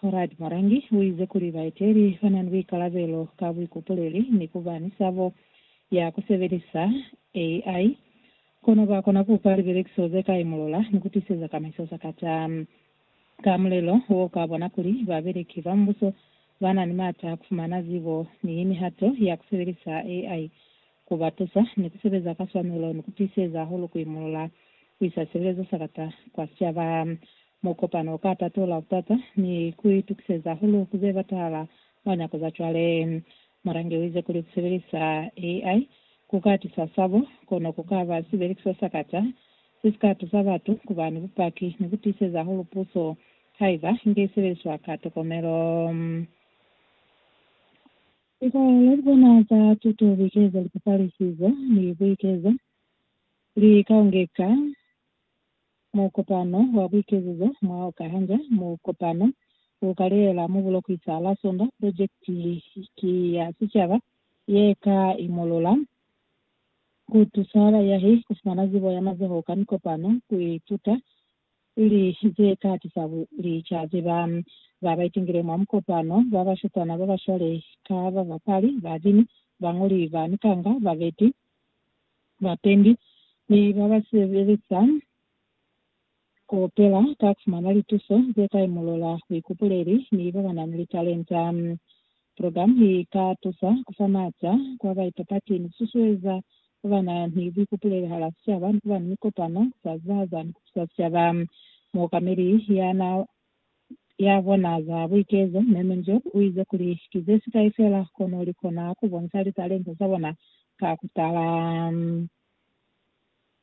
Conrad Marangi uize kuli baeteli banani buikalabelo ka buikupuleli ni kuba ni sabo ya kusebelisa AI, kono bakona kupa libelekiso zekai mulola ni kutiseza kamaiso sakata. Ka mulelo wo ukabona kuli babeleki ba Mubuso banani maata a kufumana zibo ni mihato ya kusebelisa AI ku ba tusa ni ku sebeza ka swanelo ni ku tiiseza hahulu ku imolola ku isa sibilezo sa kata kwa sicaba. Mukopano u ka tatola butata ni ku itukiseza hahulu ku ze batahala mwa nyako za cwale. Mulangi u ize kuli ku sebelisa AI ku ka tisa sabo, kono ku ka ba sibelekiso sa kata se si ka tusa batu ku ba ni bupaki ni ku tiiseza hahulu puso haiba i nge i sebeliswa ka tokomelo. Likola li bona za tuto likeza lipapalisizo ni buikezo li kaongeka mukopano wa buikezizo mwa oka hanga mukopano u kalela mu bulokwi sa la Sonda. Projekiti ki ya sicaba ye ka imolola ku tusa bayahi ku fumana zibo ya mazoho ka mikopano, ku ituta Luli ze katisa kuli cwazi ba ba ba itingile mwa mukopano ba bashutana ba ba shwale ka babapali, babini, bañoli ba mikanga, babeti, bapendi, ni ba ba sebelisa kaufela ka kufumana lituso ze kai mulola, buikupuleli, ni ba ba na ni litalenta Program hii ka tusa ku fa maata kwa ba ipapati ni ku susueza ba ba na ni buikupulelo hala sicaba ni kuba ni mikopano ku sa zibahaza ni ku tusa sicaba. Muokameli ya na ya bona za buikezo, Mme Munjok, u ize kuli, Ki ze sikai fela kono li kona ku bonisa litalenta za bona ka ku tala.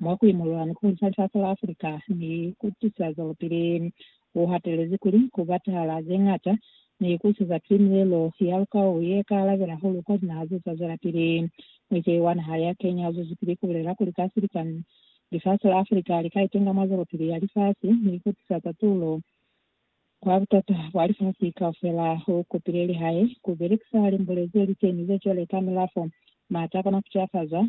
mwa ku imolola ni ku ncancafola Africa ni ku tisa zwelopili. U hatelezi kuli, Ku batahala ze ñata ni ku siza ki milelo ya lukau ye ka alabela hahulu kwa linaha ze sa zwelapili. Muikei wa naha ya Kenya u zwezipili ku bulela kuli ka silikani, lifasi la Africa li ka itenga mwa zwelopili ya lifasi ni ku tisa tatululo kwa butata bwa lifasi kaufela. U kopile lihae ku belekisa limbule ze li teni ze cwale ka milafo, mata a kona ku cafazwa,